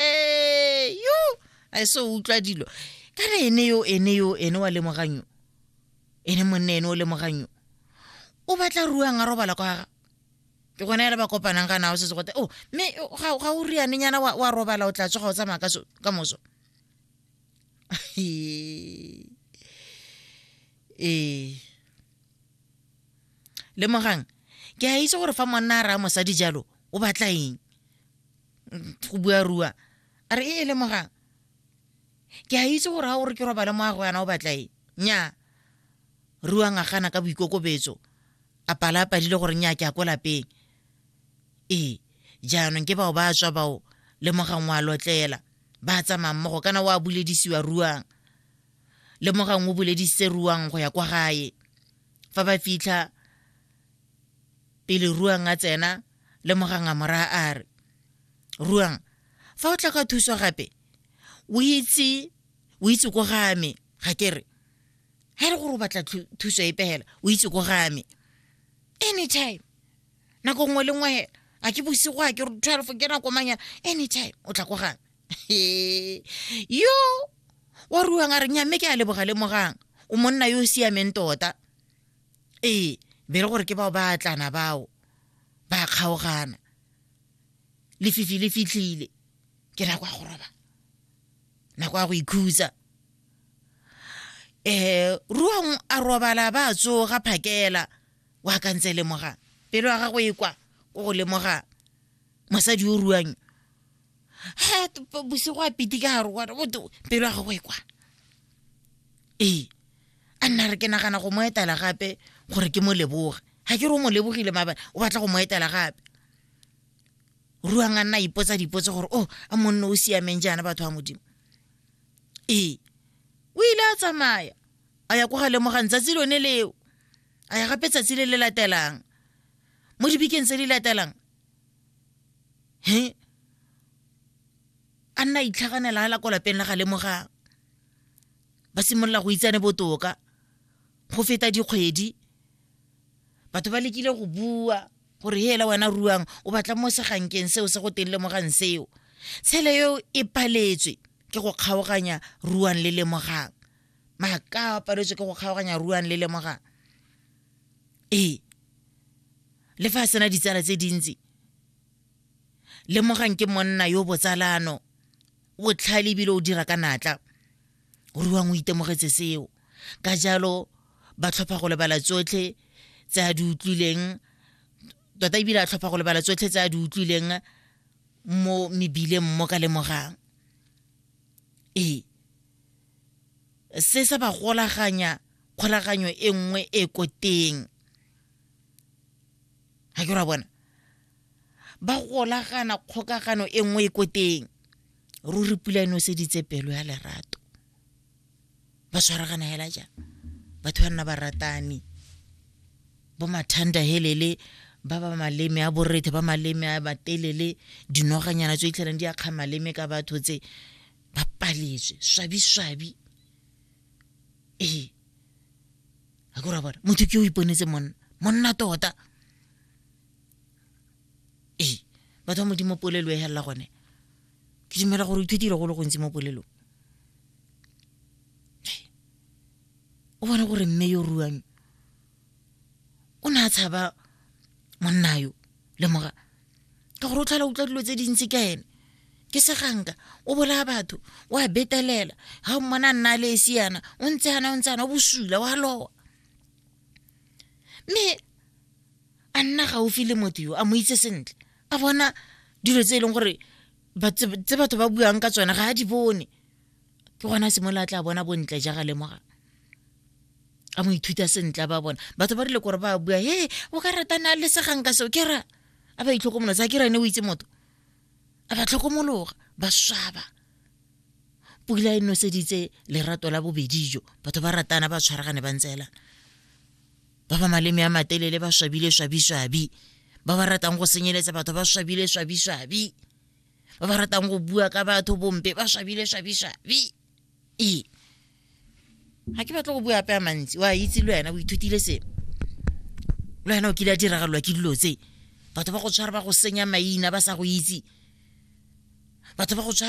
yo a e se o utlwa dilo ka re ene yo ene yo ene wa lemogang yo ene monne ene o lemogang yo o batla ruang a robala kwa ga ke gone ele ba kopanang ga nao setse gote o oh, mme ga ga o rianenyana wa wa robala o tla tsoga o tsamaya ka so ka moso ee le mogang ke a itse gore fa monna a raya mosadi jalo o batla eng go bua rua a re e e lemogang ke a itse gore ga gore ke robale mo a go yana o batla e nya rua ngagana ka boikokobetso a pala a padile gore nya ke a ko lapeng ee jaanong ke bao ba tswa bao lemogang wa lotlela ba tsamaya mmogo kana wa buledisiwa ruang lemogang o buledisitse ruang go ya kwa gae fa ba fitlha pele ruang a tsena le moganga moraga a re ruang fa o tla ka thuso gape o itse o itse ko game ga ke re ga e le gore o batla thuso e pegela o itse ko game anytime nako nngwe le nngwe hela a ke bosigo a ke re twelve ke nako manyana anytime o tla ko game yo wa ruang a re nyamme ke a leboga lemogang o monna yo o siameng tota ee be le gore ke bao ba atlana bao ba kgaogana lefifi le fitlhile ke nako ya go roba nako ya go ikhutsa um ruang a robala ba tsoga phakela wa ka ntse lemoga pelo ya gagwe e kwa ko go lemoga mosadi o ruang ha bosigo a piti ka gare gona bote pelo ya gago e kwa ee a nna re ke nagana go mo etela gape gore ke mo leboge ga ke re o mo lebogile maabane o batla go mo etela gape ruang a nna ipotsa dipotse gore o oh, a monne o siameng jaana batho ba modimo ee o ile a tsamaya a ya ko ga lemogang tsatsi lone leo a ya gape tsatsi le le latelang mo dibikeng tse di latelang he a nna a itlhaganela a la ko lapeng la ga lemogang ba simolola go itsane botoka go feta dikgwedi batho ba lekile go bua gore he ela wena ruang o batla mo segankeng seo se go teng lemogang seo tshele eo e paletswe ke go kgaoganya ruang le lemogang maaka a paletswe ke go kgaoganya ruang le lemogang ee le fa a sena ditsala tse dintsi lemogang ke monna yo botsalano botlhale ebile o dira ka natla ruang o itemogetse seo ka jalo ba tlhopha go lebala tsotlhe tse a di utlwileng tota ebile a tlhopha go lebala tsotlhe tse a di utlwileng mo mebileng mo ka lemogang ee se sa ba golaganya kgolaganyo e nngwe e ko teng ga ke ra bona ba golagana kgokagano e nngwe e ko teng ruri pula e noseditse pelo ya lerato ba tshwaragana hela jang batho ba nna ba ratane bo mathanda helele ba ba maleme a borethe ba maleme a batelele dinoganyana tse itlhelang di akga maleme ka batho tse ba paletswe swabi-swabi ee a ke rabala motho ke o iponetse monna monna tota ee batho ba modimo polelo e helela gone ke dumela gore o ithutile go le gontsi mo polelong o bone gore mme yo ruang o ne a tshaba monna yo lemoga ka gore o tlhola utlwa dilo tse dintsi ka ene ke seganka o bolaya batho o a betelela ga o mmona nna le esi yana o ntse yana o ntse yana o bosula wa lowa mme a nna gaufi le motho yo a mo itse sentle a bona dilo tse e leng gore tse batho ba buang ka tsone ga a di bone ke gona simolola tla bona bontle ja ga lemoga a mo ithuta sentle ba bona batho ba rile kore ba bua he o ka ratana le segang ka seo ke ra a ba itlhokomolosa a ke ra ne o itse motho a ba tlhokomologa ba swaba pula e noseditse lerato la bobedi jo batho ba ratana ba tshwaragane ba ntseelana ba ba maleme a matelele ba swabile swabiswabi ba ba ratang go senyeletsa batho ba swabile swabiswabi ba ba ratang go bua ka batho bompe ba swabile swabiswabi ee ga ke batle go bua ape a mantsi wa itse le wena o ithutile sengwe le wena o kile a diragalelwa ke dilo tse batho ba go tshwara ba go senya maina ba sa go itse batho ba go tshwara